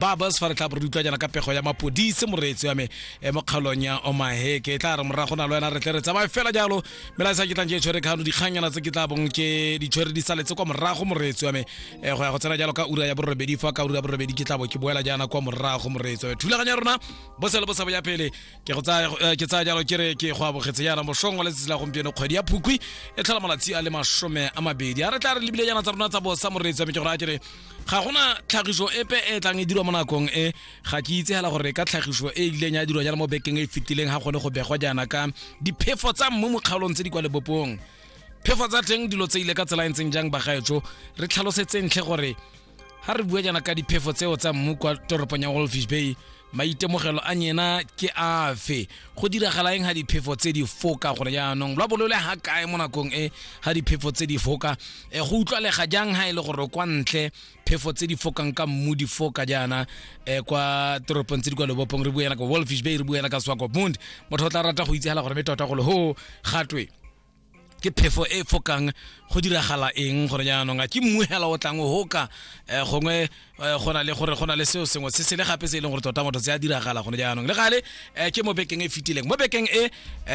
ba bus fa re tla re utlwa jana ka pego ya mapodise moreetsi wa me e mo kgaolong ya omahe ke tla re morago na le wena re tle re tsamaye fela jalo melaetsa ke tlang ke e tshwere kgano dikgangyana tse ke tla bong ke di tshwere di saletse kwa morago moreetsi wa me um go ya go tsena jalo ka ura ya borobedi fa ka ura ya borobedi ke tla bo ke boela jaana kwa morago moreetsi wa me thulaganya rona bosele bo sabo ya pele ke go tsaya eh, ke tsaya jalo ke re ke go abogetse yana mosong wa letsatsi la gompieno kgwedi ya phukwi e tlhola malatsi a le masome a mabedi a re tla re lebile yana tsa rona tsa bosa moreetsi wa me ke gore a ke re ga gona tlhagiso epe e tlang e dirwa mo nakong e ga ke itse hela gore ka tlhagiso e ileng ya dirwa jana mo bekeng e fitileng ga gone go begwa jaana ka diphefo tsa mmu mo kgaolong tse di kwa lebopong phefo tsa teng dilo tse ile ka tsela e ntseng jang bagaetso re tlhalosetse ntlhe gore ga re bua jaana ka diphefo tseo tsa mmu kwa toropong ya wolfish bay maitemogelo a nyena ke afe go diragala eng ga diphefo tse di foka gore jaanong lwa bolole ga kae mo nakong e ga diphefo tse di foka e go utlwalega jang ga e le gore kwa ntle phefo tse di fokang ka mmu di foka jaana um kwa toropong tse di kwa lobopong re buela ka wolfish bay re buela ka swakopmund motho o tla rata go itsegela gore me tota golo ho gatwe ke phefo e fokang go diragala eng gore jaanong a ke mmuhela o tlang o ka eh, gongwe eh, go na le gore go na le seo sengwe se se le gape se e leng gore tota motho se a diragala gone jaanong le gale eh, ke mo bekeng e fetileng mo bekeng e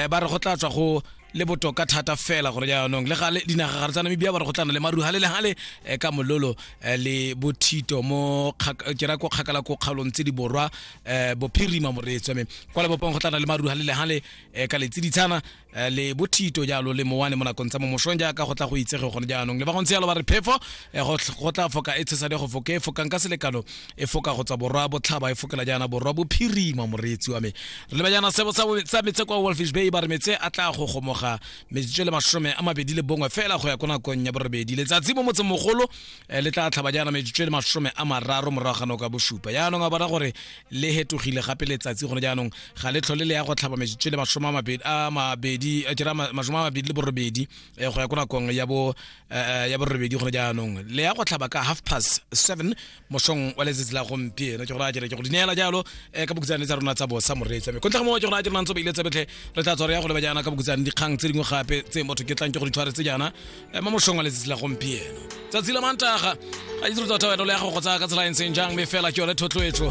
ba re go tla tswa go le botoka thata fela gore jaanong le gale dinagagare tsa namibia ba re go tlana le maru gale le gale eh, ka mololo eh, le bothito mo ke ra ko kgakala ko kgaolong tse di borwa eh, bophirima moreetswa me kwa lebopong go tlana le maru gale le gale ka letsiditshana Eh, le bothito jalo le mowane mo nakong tsa mo mosong jaaka go tla go itsege gone jaanong le ba gontse jalo ba re phefo eh, go tla foka e tshesadi go foka e fokang ka selekano e foka go tswa borwa botlhaba e fokela jaana borwa bophirima moreetsi wa me re leba jaana sebo sa metse kwa wolfish bay ba re metse a tla go gomoga metsotso le masome a mabedi le bongwe fela go ya ko nakong ya borobedi letsatsi mo motseng mogolo eh, le tla tlhaba jaana metsotso le masome a mararo morago ga nako ya bosupa jaanong a bona gore le hetogile gape letsatsi gone jaanong ga le tlhole le ya go tlhaba metsotso le masome a mabedi a kera masome a mabedi le borobedi eh, go ya ko nakong ya bo eh, eh, ya borobedi gone jaanong le ya go tlhaba ka half past seven mosong wa letsatsi la gompieno ke gore a kere ke go dineela jalo ka bokutsane tsa rona tsa bosa moreetsa me kontlha mo ke gore a kere nantse ba ile tsa betlhe re tla tswa re ya go leba jaana ka bokutsane dikgang tse dingwe gape tse motho ke tlang ke go di tshwaretse jaana ema mošong wa letsatsi la gompieno tsatsi la mantaga ga itse re tota wena le ya go go tsaya ka tsela e ntseng jang mme fela ke yone thotloetso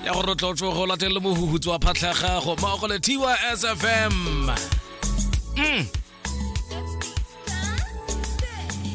ya gore re tlotlo go latelele mohuhutso wa phatlha gago mmogo le tys fm mm.